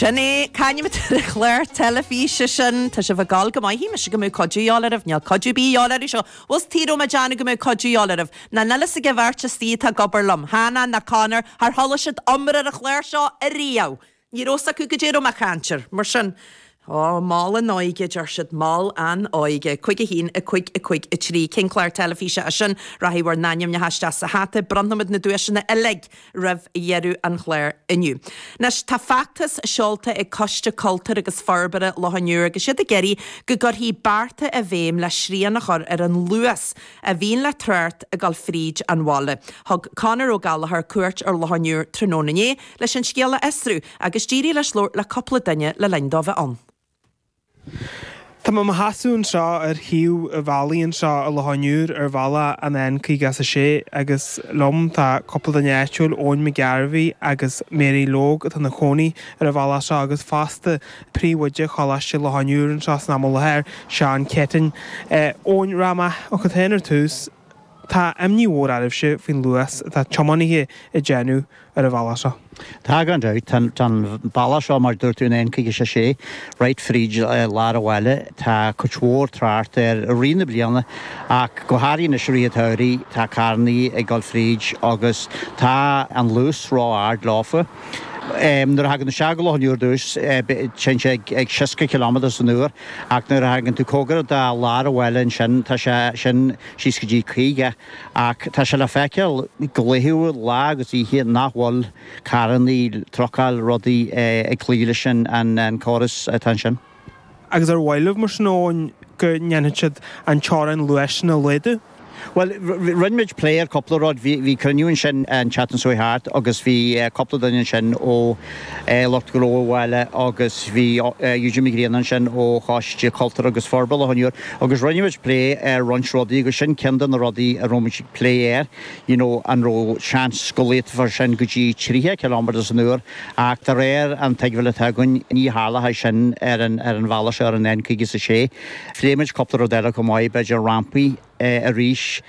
Sin é, cén t-ainm atá ar an chlár teilifíse sin. Tá sibh ag gol go maith. Shíl mise go mbeadh cuidiú a dhíobháil oraibh. Níl cuidiú ar bith a dhíobháil oraibh. Seo, bhfuil fhios tuige a rabh mé a' déanamh go mbeadh cuidiú a dhíobháil oraibh? Nó níl fhios ag a bheirt istoigh atá ag obair liom, Hannah ná Conor, char chuala siad iomrá ar an chlár seo ariamh! Ní rabh fhios acu goidé a rabh mé a chainnt ar. Mar sin, Ó, mol an óige, a deir siad, mol an óige. Cúig a haon, a cúig, a cúig a trí. Cén clár teilifíse é sin? Rachaidh bhur n-ainmneacha isteach sa hata. Bronnfaimid na duaiseanna uilig roimh dheireadh an chláir inniu. Anois, tá feachtas seolta ag Coiste Cultúir agus Forbartha Loch an Iúir agus iad ag iarraidh go gcuirfí bearta i bhféidhm le srian a chur ar an luas a bhíonn le trácht ag dul fríd an bhaile. Thug Conor Ó Gallchóir cuairt ar Loch an Iúir tráthnóna inné. leis an scéal a fhiosrú agus d'éirigh leis labhairt le cúpla duine le linn dó bheith ann. Tá mé i mo sheasamh anseo ar thaobh an bhealaigh anseo i Loch an Iúir ar bhealach an N56 agus liom tá cúpla duine áitiúil, Eoin Mac Gairbheith agus Mary Logue atá ina gcónaí ar an bhaile seo agus fosta príomhoide Choláiste Loch an Iúir anseo san am i láthair, Seán Céitinn. Eoin, rachaidh mé chugat féin ar tús. Tá imní mhór oraibhse faoin luas atá tiománaithe ag déanamh ar an bhealach seo. Tá, gan dabht. Tá an bealach seo, mar a dúirt tú, an N56, right fríd lár an bhaile. Tá cuid mhór trácht air i rith na bliana ach go háirithe anois i rith an tsamhraidh. Tá carrannaí ag dul fríd agus tá an luas ró-ard leofa. Nuair a thagann tú isteach go Loch an Iúir ar dtús, téann sé ag 60 ciliméadar san uair. Ach nuair a thagann tú comhgarach do lár an bhaile ansin, tá sé sin síos go dtí 50, ach tá sé le feiceáil go laethúil, lá agus oíche, nach bhfuil carrannaí, trucailí, rudaí ag cloí leis an córas atá ansin. Agus ar mhaith libh, mar sin, go ndéanfadh siad an teorainn luais sin a laghdú? Bhuel, rinne muid plé ar cúpla rud. Bhí cruinniú ansin an tseachtain seo thart agus bhí cúpla duine ansin ó lucht gnó an bhaile agus bhí Eugene McGreaney ansin ó Choiste Cultúir agus Forbartha Loch an Iúir agus rinne muid plé ar roinnt rudaí agus sin ceann de na rudaí a raibh muid ag plé air, you know an raibh seans go laghdódh muid sin go dtí 30 km san uair ach de réir an tuigbheáil atá againn ní cheadaítear sin ar an bhealach seo ar an N56. Phléigh muid cúpla rud eile chomh maith, b'fhéidir rampaí arís.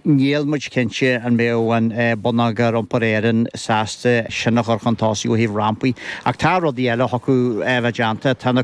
Níl muid cinnte an mbeadh Bonneagar Iompair Éireann sásta sin a chur chun tosaigh ó thaobh rampaí. Ach tá rudaí eile a thiocfadh a bheith déanta. Tá na.